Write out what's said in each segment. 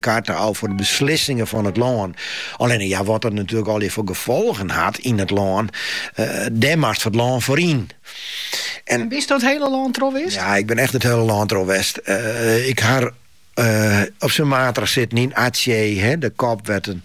Karten ôf foar de beslissingen fan it lân. Allinne ja, wat dat natuerlik allegear foar gefolgen hat yn it lân, dêr moatst foar it lân yn. En bist do it hiele lân troch west? Ja, ik bin echt it hiele lân troch west. Ik ha op Sumatra sitten yn Aceh, de kop wêr't it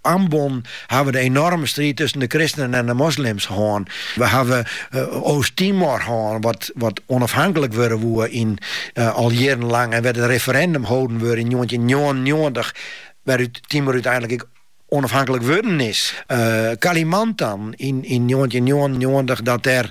Ambon hawwe de enorme striid tusken de kristenen en de moslims hân. We hawwe Oost-Timor hân, wat onafhanklik wurde woe en al jierrenlang en wêr't in referindum holden wurde yn njoggentjinhûndertnjoggenennjoggentich, wêrút Timor úteinlik ek onafhanklik wurden is. Kalimantan yn njoggentjinhûndertnjoggenennjoggentich, dat dêr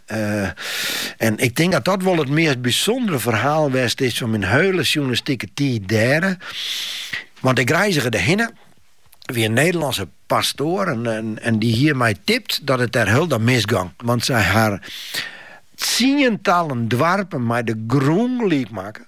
en ik tink dat dat wol it meast bysûndere ferhaal west is fan myn hiele sjoernalistike tiid dêre. Want ik reizge derhinne, wie in Nederlânske pastoar en, en, en dy hie my tipt dat it dêr hielendal misgong. Want sy ha tsientallen doarpen mei de grûn gelyk makke.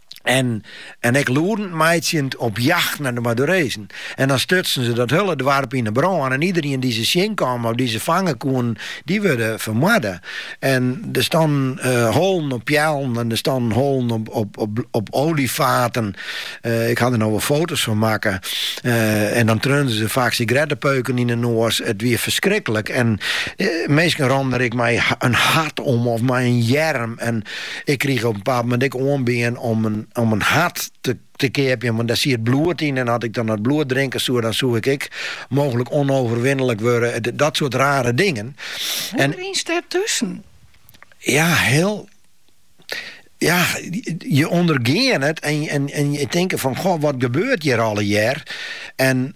En, en ek lûdend meitsjend op jacht nei de Madurezen. En dan stutsen se dat hiele doarp yn 'e brân en iederien dy't se tsjinkamen of dy't se fange koenen, dy wurde fermoarde. En der stannen holen op peallen en der stannen holen op, op, op, op oliefaten. Ik ha der no wol foto's fan makke. En dan treauden se faak sigarettepeuken yn 'e noas. It wie ferskriklik. En minsken rûnen der ek mei in hart om of mei in earm. En, Ik krige op in bepaald moment ek oanbean om in hart te keapjen, want dêr siet bloed yn en as ik dan dat bloed drinke soe, dan soe ik ek mooglik onoverwinlik wurde. Dat soart rare dingen. Hoe rynst dêr tusken? Ja, heel. Ja, je ondergean it en je tinke fan, goh, wat gebeurt hjir allegear? En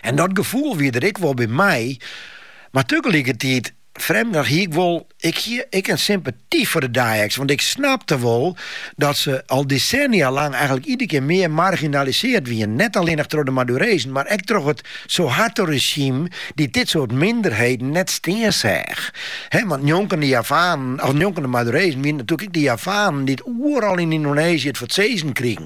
En dat gefoel wie der ek wol by my, mar tagelikertiid frjemdich hie ik wol ek in sympaty foar de Dayaks, want ik snapte wol dat se al desennia lang eigenlik iedere kear mear marginalisearre wiene, net allinnich troch de Madurezen, mar ek troch it Suharto-rezjym dy't dit soart minderheden net stean seach. Want njonken de Javanen, of njonken de Madurezen, wiene it natoerlik ek de Javanen dy't oeral yn Yndoneezje it foar it sizzen krigen.